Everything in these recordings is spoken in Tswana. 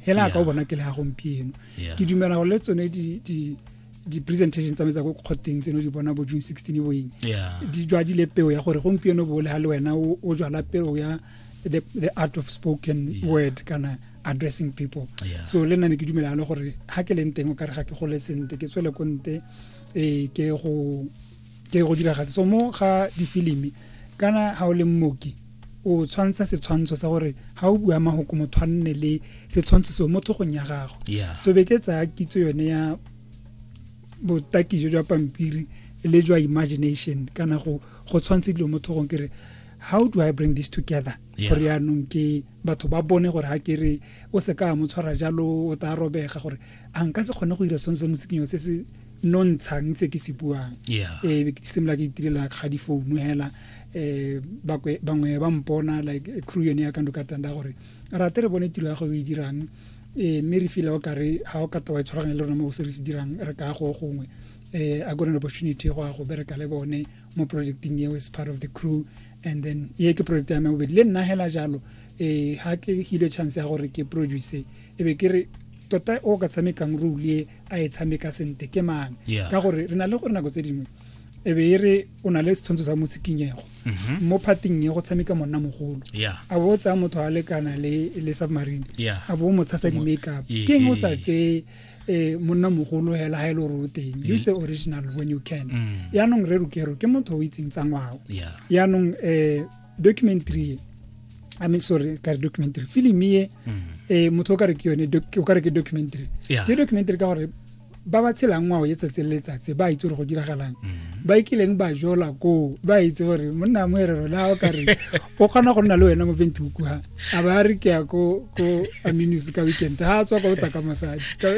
hela ka o bona ke le ga gompieno ke dumela go le tsone di-presentation tsa me tsa ko kgotteng tseno di bona bo june sixteen boeng di jwadile peo ya gore gompieno bo le ga le wena o jwala peo ya the, the art of spoken yeah. word kana addressing people yeah. so le nna ne ke dumelana gore ga ke leng teng o kare ga ke gole sente ke tswele ko nte um ke go ke go diragatse so mo ga difilimi kana ga o le mmoki o tshwantsha setshwantsho sa gore ga o bua mahoko motho a nne le setshwantsho seo mo tlhogong ya gago so be ke tsaya kitso yone ya botaki jo jwa pampiri le jwa imagination kana go go tshwantshe dilo mo tlhogong kere how do i bring this together gore yaanong ke batho ba bone gore ga ke re o se ka mo tshwara jalo o tla robega gore a nka se kgone go dira sone se mosiking se se nontshang se ke se buang yeah. e ke simolola ke itirela ga difounu hela eh bangwe ba mpona like eh, crew yone ya ka ndoka tanda gore rate re bone tiro ya go e dirang eh mme re feel o kare ha o ka tawa e tshwaragane le rona mo go se re se dirang re ka go gongwe eh a gone opportunity go a go bereka le bone mo projecting eo as part of the crew and then ye ke project ya me bobedi le nna hela jalo eh ha ke hile chance ya gore ke produce e be ke re tota o ka tshamekang role e a e tshameka sente ke mang ka gore re na le gore nako tse dingwe e be e re o na le setshwantsho sa mosikinyego mhm. mo phating e go tshameka monna mogolo a bo o tsaya motho a lekana le submarine a bo o mo tshasa di-makeup ke eng o sa tseye eh monna mogolo hela ha ile e o teng mm. use the original when you can mm. yaanong re rukero ke motho o itseng tsa ngwao yaanong um eh, documentary e I mean sorry ka re documentary film e eh motho o ka re ke yone doc- o ka re ke documentary Yeah. ke documentary ka gore ba ba tshelang ngwao e tsatsi le letsatsi ba itse gore go diragalang ba ikileng ba jola koo ba itse gore monna mo ere rona o ka re o kgona go nna le wena mo venthook ha a ba re ke ya ko ko aminus ka weekend ha a tswa ka o taka mosadi Ka-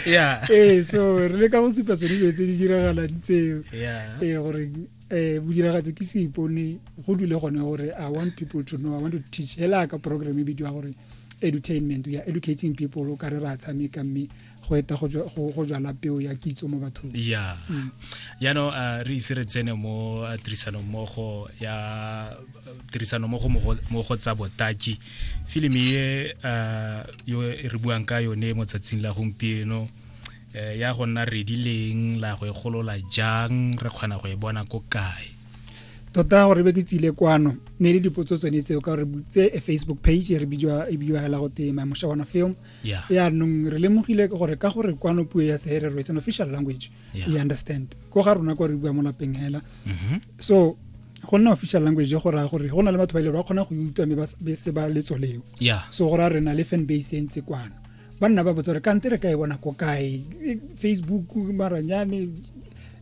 yeah eh so re le ka go supa tsone dilo tse di diragalang tseo eh gore eh bodiragatse ke seipone go dule gone gore i want people to know i want to teach hela ka program e bidiwa gore edutainment we are educating people o ka re ra tshameka mme go eta go jala peo ya kitso mo bathong ya mm. yaanong uh, re ise re tsene mo uh, tirisanommogo ya uh, tirisanommogo mo go tsa botaki filimi e uh, yo e re buang ka yone mo tsatsing la gompieno um ya go nna redileng la go e golola jang re kgona go e bona ko kae tota gore be ke tsile kwano ne le dipotso tsone tseo ka gore tse e facebook page e re e bidiwa hela go tema mosha wana film ya nong re lemogile gore ka gore kwano puo ya seherero it's an official language yeah. you understand ko ga rona kwa re bua mo lapeng hela mm -hmm. so go nna official language go raya gore go na le batho ba ile e ba kgona go utlwa mme ba se ba letso leo yeah. so go raya re na le fan base e ntse kwana ba nna ba botsa gore kante re ka e bona ko kae e, facebook maranyane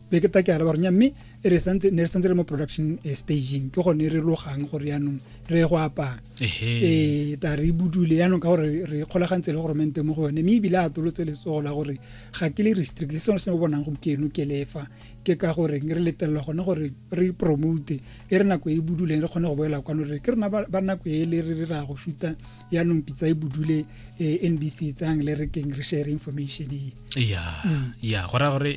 be ke take araba ronya mme e re santse ne re santse le mo production eh, staging ke gone re logang gore yaanong re go apaa ee ta re budule yaanong ka gore re kgolagantse le goromente mo go yone mme ebile a tolotse letsogo la gore ga ke le restrict se sengwe se o bonang gore ke eno ke lefa ke ka gore re letelela gone gore re promote e re nako e e buduleng re kgone go boela kwano re ke rena ba nako e le re ra go shuta yaanong pitsa e budule eh, n b c tsang le re keng re share information e ya mm. ya go raya gore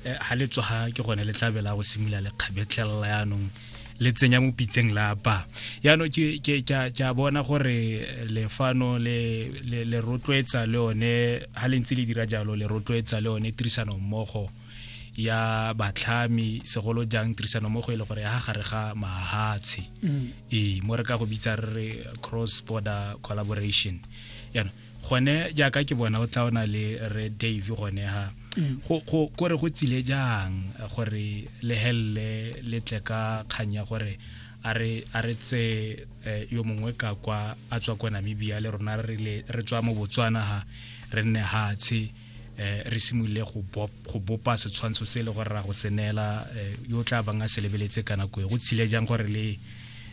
ga eh, le tsoga ke gone le tlabela go simolola le kgabetlelela yaanong le tsenya mo pitseng la ba yaanong ke a bona gore lefano le rotloetsa le one ga le ntse le dira jalo le rotloetsa le one tirisano mmogo ya batlhami segolo jang tirisano mo go e le gore ya gare ga mahatshe mm. ee mo re ka go bitsa re re cross border collaboration yana gone jaaka ke bona o tla o na le re dave gone ha mm. gore go tsile jang gore le helele le tle ka kgang ya gore a re tse eh, yo mongwe ka kwa a tswa kwa namibia le rona re tswa mo botswana ha re nne hatshe eh re simolole go go bopa setshwantsho se le gore ra go senela eh, yo tla bang a se lebeletse ka nako e go tshile jang gore le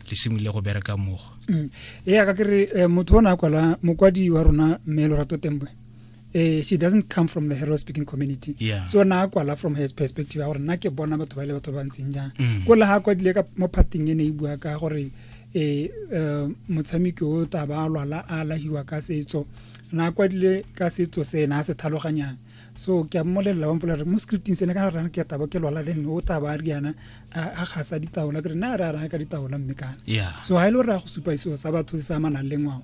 le simolole go bereka mmogo mm. ee ka ke re eh, motho o ne a kwala mokwadi wa rona mme lorato tembwe eh, she doesn't come from the hero speaking community yeah. so na kwala from her perspective ya gore nna ke bona batho ba le batho ba ntseng jang mm. ko le ga kwadile ka mo phatheng e ne e bua ka gore eh, eh motshameki o taba a lwala a lahiwa ka setso na kwadile ka setso se ena a se tlhaloganyang so ke a mmolelela wa mpolare mo scripting se ne ka rana ke taba ke lwala then o taba a re yana a gasa ditaola ke re na re a rana ka ditaola mme kana so ha ile e re a go supa seo sa batho se amanang le ngwao